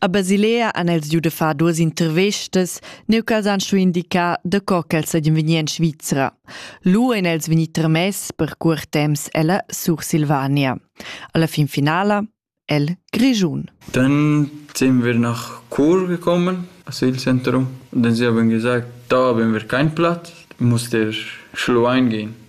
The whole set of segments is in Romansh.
A Basilea han els giu da far duas intervestas, neu cas han schu indicar da co ch'els ein vegni en Svizra. Lu ein els vegni tramess per cuort temps ella Sursilvania. Alla fin finala el Grischun. Dann sind wir nach Chur gekommen, Asylzentrum. Und dann sie haben gesagt, da haben wir keinen Platz, muss der Schluein gehen.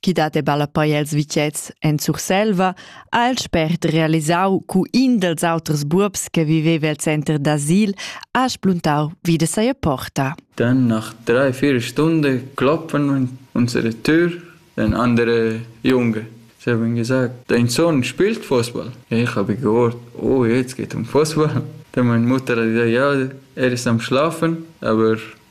chi dat e balla poi els vicets en Surselva, ha el spert realisau cu in dels auters buobs che viveva al center d'asil ha spluntau vi de seia porta. Dann nach drei, vier Stunden klopfen unsere Tür, ein andere Junge. Sie haben gesagt, dein Sohn spielt Fußball. Ich habe gehört, oh, jetzt geht um Fußball. Dann meine Mutter hat gesagt, ja, er ist am Schlafen, aber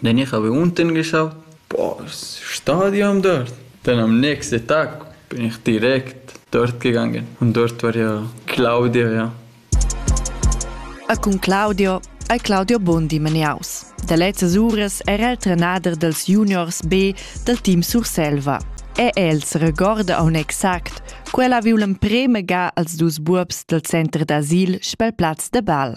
Nagin havev'unten glischau per stadium dort. Dann am nächsten Tag bin ich direkt dort gegangen und dort war ja Claudia ja. E cun Claudio ei Claudio Bondi maniaus. Da lezzas uras era el trenader dels juniors B del team Surselva. E els regorda aun exact, quella viu l'emprema ga als dus buobs del center d'asil spel plaz de bal.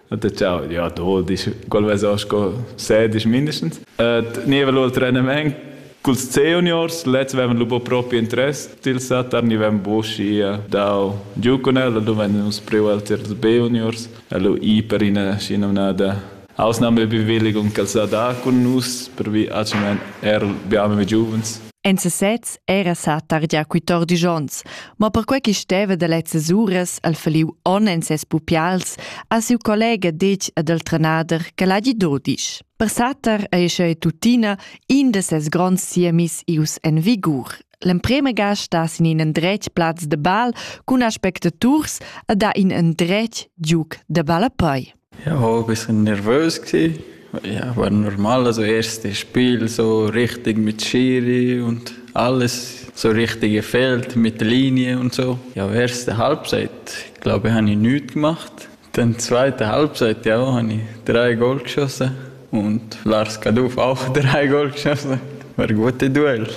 Und ciao, ja, da, disch, qualcosa sco 16 mindestens. Et niva lur trenament culs juniors, lezs avevan lu propi interess til satar, ni avevan buschi dau giu cun el, lu vevan nus priu alters B-juniors, lu iper ina schinomnada ausnahme Bewilligung che sa da cun nus, per vi, also, wir haben wir Juvens. En sesez era sa targia quittordisch onns, ma perquei che steva da lezzas uras al feliu onn en ses pupials ha siu collega detg ad el trenader che l'hagi dodisch. Per satar ei scheu tuttina in da ses gronds siemis ius en vigur. L'emprema ga sta sin in endretg plaz de bal cun aspectaturs a da in endretg giuc de ballapei. Jau ho ün bisschen nervös gsi, ja va normal, also erst der Spiel so richtig mit Schiri und alles so richtig gefällt mit der Linie und so. Ja, erste Halbzeit, glaube ich, habe ich nichts gemacht. Dann zweite Halbzeit, ja, habe ich drei Goal geschossen und Lars Caduff auch drei Goal geschossen. War ein gutes Duell.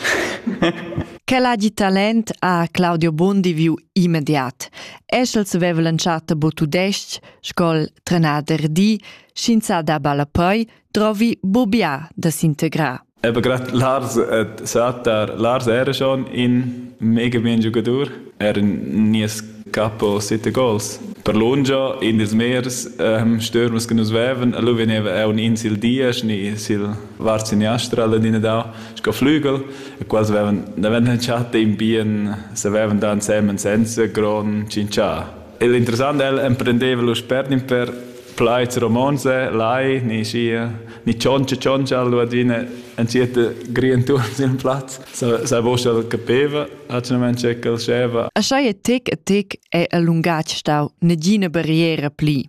Quel ha gi talent ha Claudio Bondi viu immediat. Eschels vevel entschatta bo tudestg, Sco'l trenader di, sch'ins ha da ballapoi, drovi bubià da s'integrar. Eben gerade Lars hat gesagt, Lars er schon in mega bien Jugador. Er nie capo sette goals. Per lungia in des meers ähm, stürmers que nus veven, lu veneva eu in sil dies, ni sil varziniastra alla dina da, sco flügel, e quals veven, da veven chat in bien, se veven da ansemen senza gron cincià. Il interessant el emprendeva lu spergnin per plaids romonts, lai, ni sia, ni tschontscha tschontscha lu adina entschiet grientur sin plaz. Sa sa vos el capeva atgnament che el scheva. Aschai e tec e tec è el lungatg stau negina barriera pli.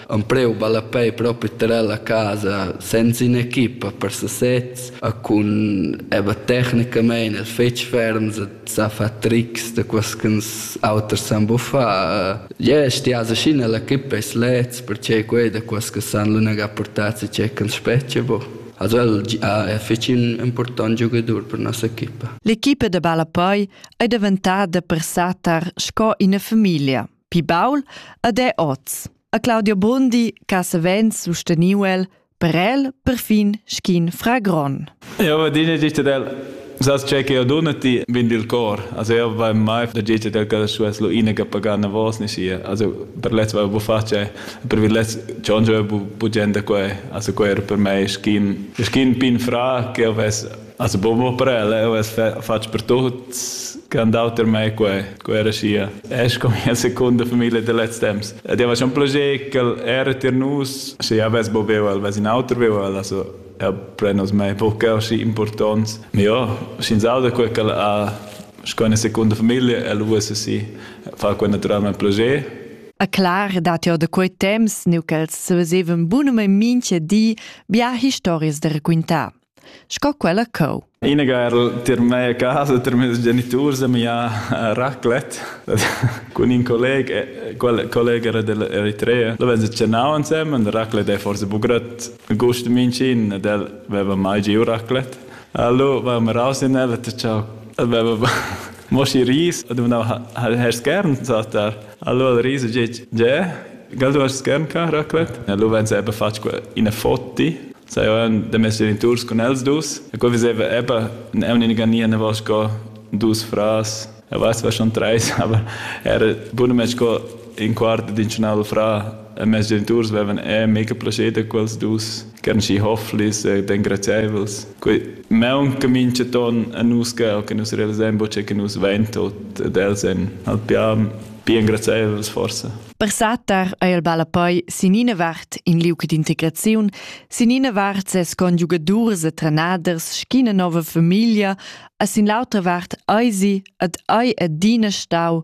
Empleu ballapei propi tar ella casa senza in'equipa per sesez e cun eba tecnicamein el fetg ferms e sa far trics da quas ch'ins auters san buffar. Jeu stiasa sc'ina l'equipa eis leds pertgei quei da quas che san lunegar portazzi tgei ch'ins spetga bu. Also el è fitg important giugadur per nossa equipa. L'equipa da ballapei ei daventada per sa tar sco ina famiglia. Pi baul ed è oz. A Claudio Brundi ca savens susteniu el per el perfin schin fragron. Eu va dinne gita del Sas ce che eu duna ti vin dil cor. Also eu va mai da gita del ca su es lo ina che pagana vos ne sia. Also per lez va bu face, per vi lez chonjo bu bu gente quei. Also quei er per me schin schin pin fra che eu ves Also Bobo Prell, eu es fatg per tuots che han dau ter mei quei, quei era sia. Es come mia seconda famiglia de lez temps. Ed era schon plagier che era ter nus, se avess bo veu al, in auter veu al, also er prenos mei buca aschi importants. Ma ja, schin sauda quei che ha sco una seconda famiglia e lui si fa quel naturalmente plagier. A clar dat jo da quei temps, neu ch'els vesevan bunum e minche di bia historias da racquintar. Sco quella cau. Ina garl tir mei a casa, tir mes geniturs a mi a raclet cun in colleg, quel colleg era dell'Eritrea. Da vense cenau ansem, und raclet è forse bu grad gust mincin, del veva mai giu raclet. Allo, va mir raus in el, et ciao. Veva mo si ris, und man hat gern gesagt da Allora Risa dice, Ge, gal du hast gern ca raclette? E allora haben sie eben fatg eine Foto, sei haben die Messerintours con els dus. E poi viseva eben, ne un'unica nie ne was go dus fras. Er weiß zwar schon drei, aber er buona match go in quarto di cinal fra e Messerintours bevan e mega placete quels dus. gan chi hofflis ed engrazieivels. Quei maunca minchaton a nus gau che nus realisein buca che nus vein tot ed els ein halt pian pli engrazieivels forsa. Per satar ei el balla poi sin ina vart in liuc d'integraziun, sin ina vart ses conjugadurs e trenaders sch'ina nova famiglia, a sin l'autra vart eisi ad ei adina stau